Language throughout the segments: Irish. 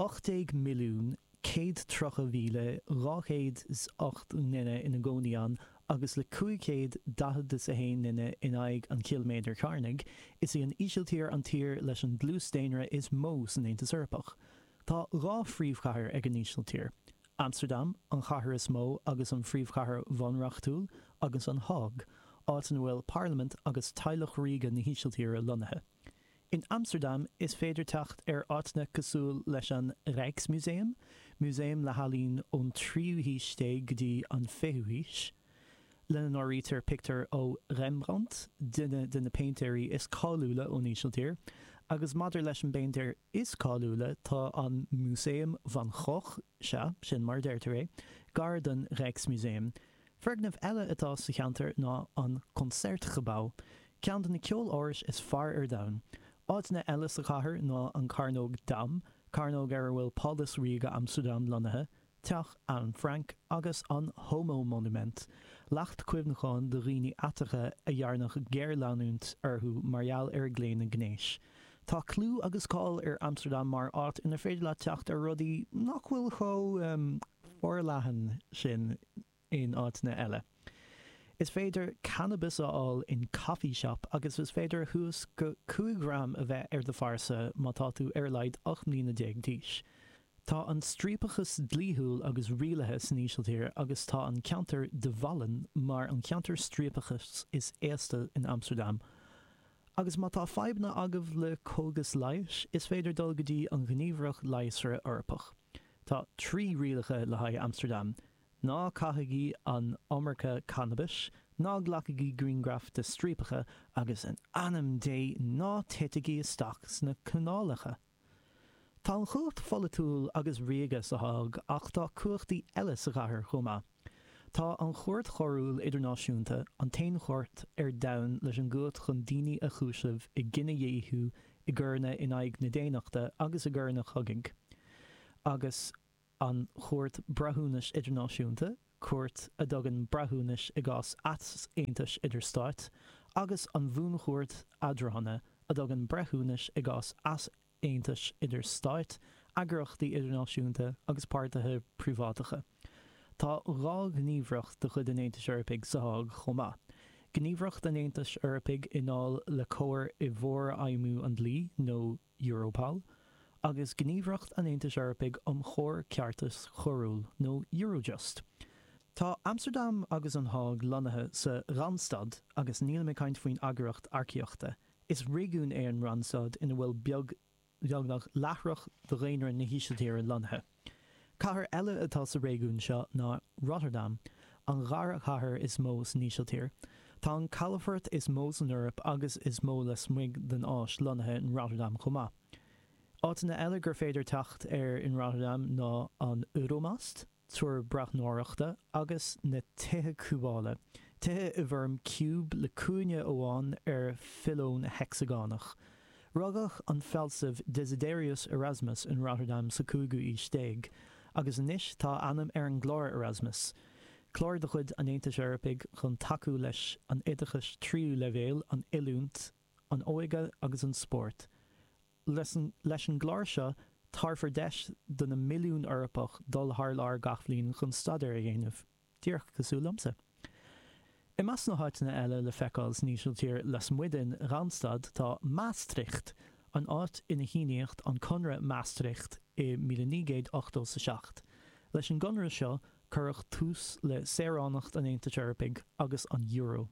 18,130,208 nduine ina gcónaí ann agus le 541 nduine in aghaidh an chiliméadair chearnaigh, is í an Ísiltír an tír leis an dlús daonra is mó san Aontas Eorpach. Tá dhá phríomhchathair ag an Ísiltír, Amstardam, an chathair is mó agus an phríomhchathair bhunreachtúil, agus An Hág, áit ina bhfuil parlaimint agus teaghlach ríoga na hÍsiltíre lonnaithe. In Amstardam is féidir teacht ar áiteanna cosúil leis an Rijksmuseum, músaem le healaín ón tríú haois déag go dtí an fichiú haois, lena n-áirítear pictiúir ó Rembrandt, duine de na péintéirí is cáiliúla ón Ísiltír, agus maidir leis an bpéintéir is cáiliúla, tá an Músaem Van Gogh, sea, sin mar a deirtear é, gar don Rijksmuseum. Foirgneamh eile atá sa cheantar ná an Concertgebouw, ceann de na ceolárais is fearr ar domhan. Áiteanna eile sa chathair ná an Chearnóg Dam, cearnóg ar a bhfuil Pálás Ríoga Amstardam lonnaithe, Teach Anne Frank agus an Homomonument, leacht cuimhneacháin do dhaoine aeracha a ndearnadh géarleanúint orthu mar gheall ar a gclaonadh gnéis. Tá clú agus cáil ar Amstardam mar áit inar féidir leat teacht ar rudaí nach bhfuil chomh forleathan sin in áiteanna eile. Is féidir cannabas a fháil in coffee shop agus is féidir suas go 5 ghram a bheith ar do phearsa má tá tú ar a laghad 18 mbliana d'aois. Tá an striapachas dlíthiúil agus rialaithe san Ísiltír agus tá an ceantar De Wallen mar an ceantar striapachais is aosta in Amstardam. Agus má tá fadhbanna agaibh le cógais leighis, is féidir dul go dtí an Ghníomhaireacht Leigheasra Eorpach. Tá trí rialacha le haghaidh Amstardam, ná caithigí an iomarca cannabais, ná glacaigí grianghraif de striapacha, agus in ainm Dé ná titigí isteach sna canálacha! Tá an chumhacht pholaitiúil agus ríoga sa Hág ach tá cumhachtaí eile sa chathair chomh maith. Tá an Chúirt Choiriúil Idirnáisiúnta, an t-aon chúirt ar domhan leis an gcumhacht chun daoine a chúiseamh i gcinedhíothú, i gcoireanna in aghaidh na daonnachta agus i gcoireanna cogaidh, agus. an Chúirt Breithiúnais Idirnáisiúnta, cúirt a dtugann breithiúnais i gcás easaontais idir stáit, agus an Bhuanchúirt Eadrána, a dtugann breithiúnais i gcás easaontais idir stáit, eagraíochtaí idirnáisiúnta agus páirtithe príobháideacha. Tá dhá ghníomhaireacht de chuid an Aontais Eorpaigh sa Hág chomh maith, Gníomhaireacht an Aontais Eorpaigh i ndáil le comhar i bhforfheidhmiú an dlí nó, Europol, agus Gníomhaireacht an Aontais Eorpaigh um Chomhar Ceartais Choiriúil nó Eurojust. Tá Amstardam agus An Hág lonnaithe sa Randstad agus nílim ag caint faoin eagraíocht earcaíochta. Is réigiún é an Randstad ina bhfuil beagnach leath de dhaonra na hÍsiltíre lonnaithe. Cathair eile atá sa réigiún seo ná Rotterdam, an dara cathair is mó san Ísiltír. Tá an calafort is mó san Eoraip agus is mó lasmuigh den Áis lonnaithe in Rotterdam chomh maith. Áiteanna eile gur féidir teacht air in Rotterdam ná an Euromast, túr breathnóireachta, agus na tithe cúbála, tithe i bhfoirm ciúb le cúinne amháin ar phiolón heicseagánach. Rugadh an fealsamh Desiderius Erasmus in Rotterdam sa cúigiú aois déag, agus anois tá a ainm ar an gClár Erasmus, clár de chuid an Aontais Eorpaigh chun tacú leis an oideachas tríú leibhéal, an oiliúint, an óige agus an spórt. Leis an gclár seo, tabharfar deis do na milliún Eorpach dul thar lear gach bhliain chun staidéar a dhéanamh. díreach cosúil liomsa. I measc na háiteanna eile le feiceáil san Ísiltír lasmuigh den Randstad tá Maastricht, an áit inar síníodh an Conradh Maastricht i míle naoi gcéad ochtó 's a seacht. Leis an gconradh seo cuireadh tús le saoránacht an Aontais Eorpaigh agus an Euro.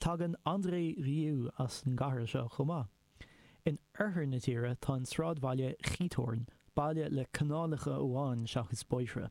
Tagann André Rieu as an gcathair seo chomh maith. In oirthear na tíre tá an sráidbhaile Giethoorn, baile le canálacha amháin seachas bóithre.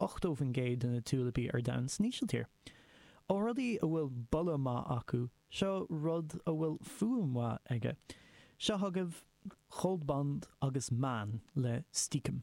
80% de na tiúilipí ar domhan san Ísiltír. Ó rudaí a bhfuil boladh maith acu, seo rud a bhfuil fuaim mhaith aige. Seo chugaibh Goldband agus Maan le Stiekem.